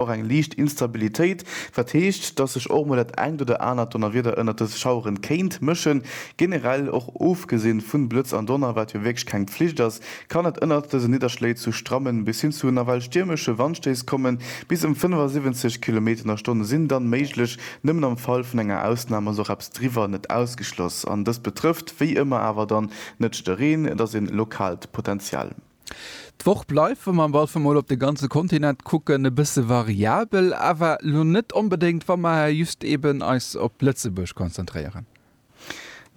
Och eng liicht Instabilitéit, wat heescht, dass sech och mol dat engt oder anert Donnerwieder ënnert dës Schaueren kéint mëschen. Generell, och ofgesinn vun Blëtz an Donner, wat jo wierklech keng Pflicht ass, kann et ënnert dësen Nidderschléi zu strammen bis hin zu nawell stiermesche Wandstéiss kommen. Bis ëm 75 Kilometer an der Stonn sinn dann méiglech, nëmmen am Fall vun enger Ausnahm ass och eppes driwwer net ausgeschloss. An dëst betrëfft wéi ëmmer awer dann net de Reen, et ass een lokaalt Potential. D'Woch bleift, wa mer am Walfer mol op de ganze Kontinent kucken, e bësse variabel, awer lo net onbedéngt, wa mer just eben eis op Lëtzebuerg konzentréieren.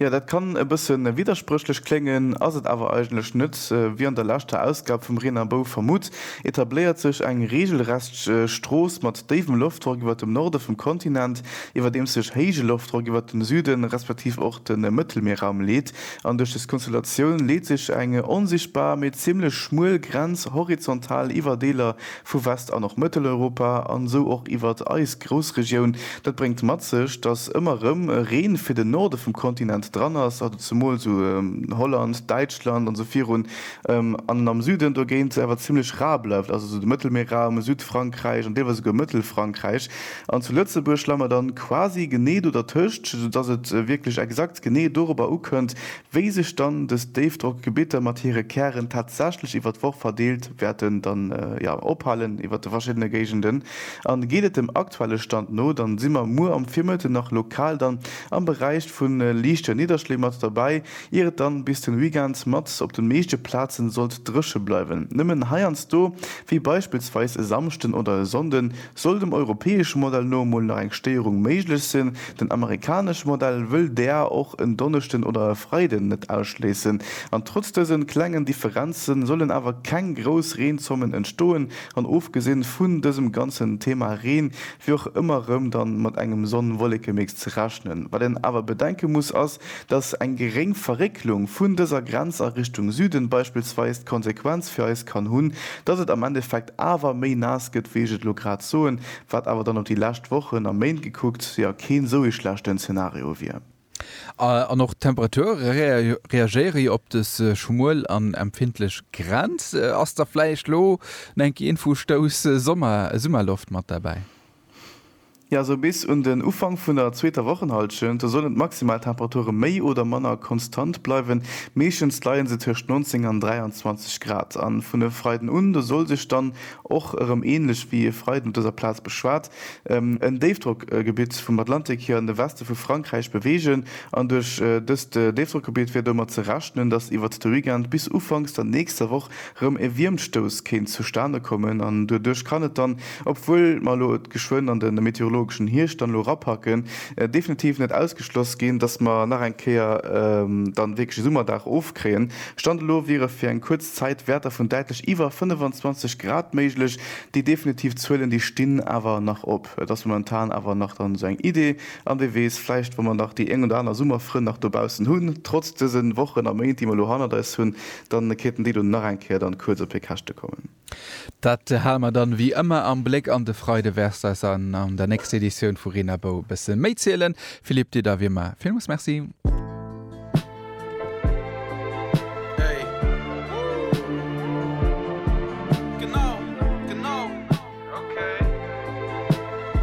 Jo, dat kann e bësse widderspréchlech kléngen, ass et awer eigentlech net. Wéi an der leschter Ausgab vum Reen a Bou vermutt, etabléiert sech eng reegelrecht Strooss mat déiwem Loftdrock iwwer dem Norde vum Kontinent, iwwerdeems sech héije Loftdrock iwwer dem Süden, respektiv och de Mëttelmierraum leet. An duerch des Konstellatioun leet sech eng onsichtbar, mee zimmlech schmuel Grenz horizontal iwwer Deeler vu West an och Mëtteleuropa an esou och iwwert eis Groussregioun. Dat bréngt mat sech, datt ëmmer rëm Reen fir den Norde vum Kontinent dran ass, also zemools esou Holland, Däitschland an esou virun, an am Süden dogéint awer zimmlech rar bleift, also esou de Mëttelmierraum, Südfrankräich an deelweis esouguer Mëttelfrankräich. An zu Lëtzebuerg leie mer dann quasi genee do dertëscht, sou dass et wierklech exakt genee dorobber ukënnt, wéi sech dann dës Déifdrockgebitter mat hire Kären tatsächlech iwwert d'Woch verdeelt wäerten dann, jo, ophalen iwwert de verschiddene Géigenden. An geet et dem aktuelle Stand no, dann si mer muer am Virmëtten nach lokal dann am Beräich vu liichte Nidderschléi mat derbäi, ier et dann bis den Weekend mat op den meeschte Plazen sollt drëche bleiwen. Nëmmen heiansdo, wéi beispillsweis e Samschden oder e Sonnden, Soll dem europäesche Modell no emol nach eng Stéierung méiglech sinn, den amerikanesche Modell wëll däer och en Donneschden oder e Freiden net ausschléissen. An trotz dësen klengen Differenzen sollen awer keng grouss Reenzommen entstoen an ofgesinn vun dësem ganzen Thema Reen wier och ëmmer rëm dann mat engem Sonn-Wollekemix ze rechnen. Wat een awer bedenke muss ass, Dass eng geréng Verrécklung vun dëser Grenz a Richtung Süden beispillsweis d'Konsequenz fir eis kann hunn, dass et am Endeffekt awer méi naass gëtt, wéi ech et elo grad soen, wat awer dann op déi lescht Wochen a Méint gekuckt, jo keen esou ee schlechten Szenario wier. An och d'Temperature reagéiere jo op des schmuel an empfindlech Grenz. Ass da vläicht elo no enke Infostouss Summerloft mat derbäi? Jo, esou bis un den Ufank vun der zweeter Wochenhallschent. Do sollen d'maximal Temperature méi oder manner konstant bleiwen. Meeschtens leie se tëscht 19 an 23 Grad. A vun e Freiden un, do soll sech dann och erëm änlech wéi e Freiden op dëser Plaz beschwat en Déifdrockgebitt vum Atlantik hier an de Weste vu Frankräich beweegen. An duerch dëst Déifdrockgebitt wier domat ze rechnen, dass iwwert de Weekend bis ufanks der nächster Woch rëm e Wiermtstouss kéint zustane kommen an doduerch kann et dann, obwuel mer elo et geschwënn an de meteorologeschen Hierscht dann elo erapacken, definitiv net ausgeschloss ginn, dass mer nach eng Kéier dann wierklech e Summerdag ofkréien. Stand elo wiere fir eng kuerz Zäit Wäerter vun däitlech iwwer 25 Grad méiglech. Déi definitiv Zuelen, déi stinn awer nach op. Et ass momentan awer nach dann esou eng Idee an wie weess, vläicht wa mer nach déi eng oder aner Summerfrënn nach dobaussen hunn, trotz dëse Wochen a Méint, déi mer elo hannert eis hunn, Dann kéinten déi do nach eng Kéier dann kuerz op hir Käschte kommen. Dat hale mer dann wéi ëmmer am Bléck an de Freide wäerts eis an an der nächster Editioun vu Reen a Bou e bësse méi zielen. Philippe Dir da wéi ëmmer villmools Merci.